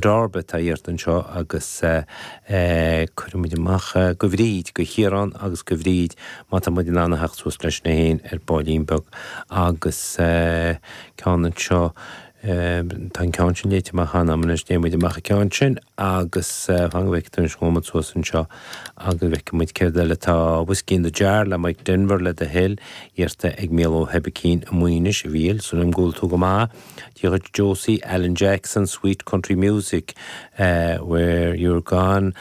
Darby atá iarrta anseo agus cuirfidh muid amach go Bhríd, go Chiarán agus go Bhríd má tá muid in ann a theacht suas leis na héin ar baillín beag agus ceann anseo, tá an ceann sin léite amach cheana anois, déanfaidh muid amach an ceann sin agus fáinne bheith ag tabhairt an chomad suas anseo agus bheith ag muid céard eile tá Whiskey in the Jar le Mike Denver le iarrta ag Mícheál Ó hEibicín, a Maoinis, a Mhíl, súil agam go bhfuil tú go maith. Díreoidh Josie Alan Jackson, Sweet Country Music, When You're Gone,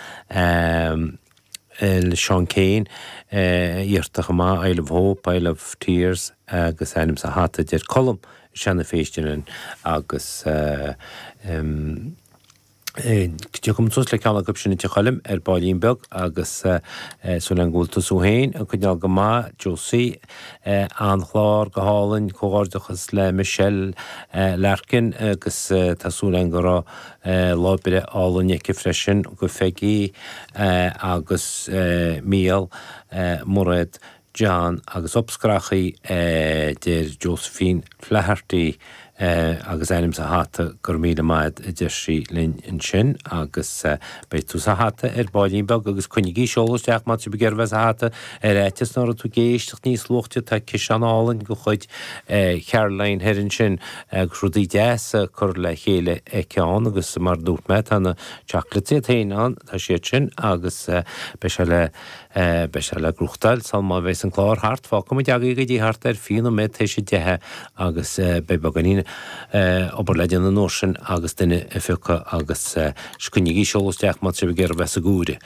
le Seán Keane, iarrtha ach mhaith, Isle of Hope, Isle of Tears, agus ainm sa hata, deir Colm, Sheáinín Festy linn agus. Tiocfaidh mise suas le ceann acu sin duit, a Choilm, ar baillín beag agus súil agam go bhfuil tusa féin ag coinneáil go maith. Josie, an-chlár, go hálainn, comhghairdeachas le Michelle Larkin agus tá súil agam go raibh lá breithe álainn aici freisin. Go Pheigí agus Mícheál, Mairéad, John agus abscracha, a deir Josephine Flaherty agus ainm sa hata, go raibh míle maith agat, a deir sí linn ansin, agus beidh tú sa hata ar baillín beag agus coinnígí ag seoladh isteach má tá sibh ag iarraidh bheith sa hata ar fhaitíos nach raibh tú ag éisteacht níos luaithe, tá ciseán álainn de chuid Charoline thoir ansin agus rudaí deasa curtha le chéile aici ann agus mar a dúirt mé tá na chocolates iad féin ann, tá siad sin agus beidh sé le. Beidh sé le buachtáil sal má bhéas an clár thart. Fágfaidh muid agaibh go dtí thart ar fiche nóiméad t'éis a deich agus beidh beagáinín obair le déanamh an uair sin agus duine a phiocadh agus sh. Coinnígí ag seoladh isteach má tá sibh ag iarraidh bheith sa hata.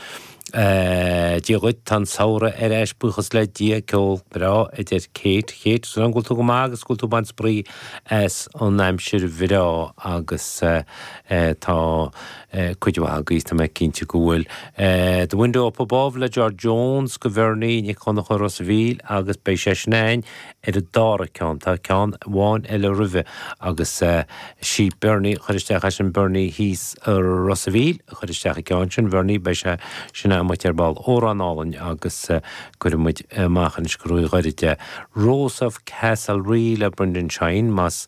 Dia dhuit, tá an Samhradh ar ais buíochas le Dia. Ceol breá, a deir Kate. Kate, súil agam go bhfuil tú go maith agus go bhfuil tú ag baint spraoi as an aimsir bhreá agus tá. cuid mhaith agaibh, tá mé cinnte go bhfuil. The Window Up Above le George Jones, go Bhearnaí Nic Dhonncha, Ros a' Mhíl agus beidh sé sin againn ar an dara ceann. Tá ceann amháin eile roimhe agus sí Bearnaí a chuir isteach é sin Bearnaí thíos i Ros a' Mhíl a chuir isteach an ceann sin Bhearnaí, beidh sé sin amuigh ar ball amhrán álainn agus cuirfidh muid amach anois go Ruairí The Rose of Castlerea le Brendan Shine, más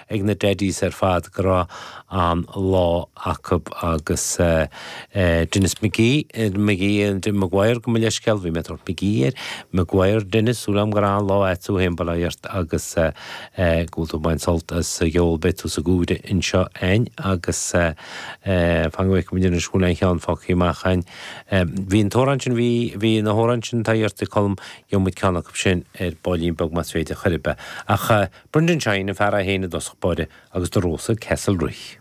ag na Daddies ar fad go raibh an lá acu agus Denis McGee, McGee, Maguire gabh mo leithscéal bhí mé ag tabhairt McGee air, Maguire, Denis súil agam gur raibh lá ait a'd féin bail ort agus go bhfuil tú ag baint sult as a gceol beidh tú sa gcúlra anseo a'inn agus fan go bhfeicfidh muid anois go bhfuil aon cheann fágthaí amach a'inn bhí an t-amhrán sin, bhí, bhí na hamhráin sin tá fhios a'd Colm gheobhaidh muid ceann acu sin ar baillín beag más féidir chor ar bith ach. Brendan Shine, an fear a sheinn i dtosach báire, agus The Rose of Castlerea.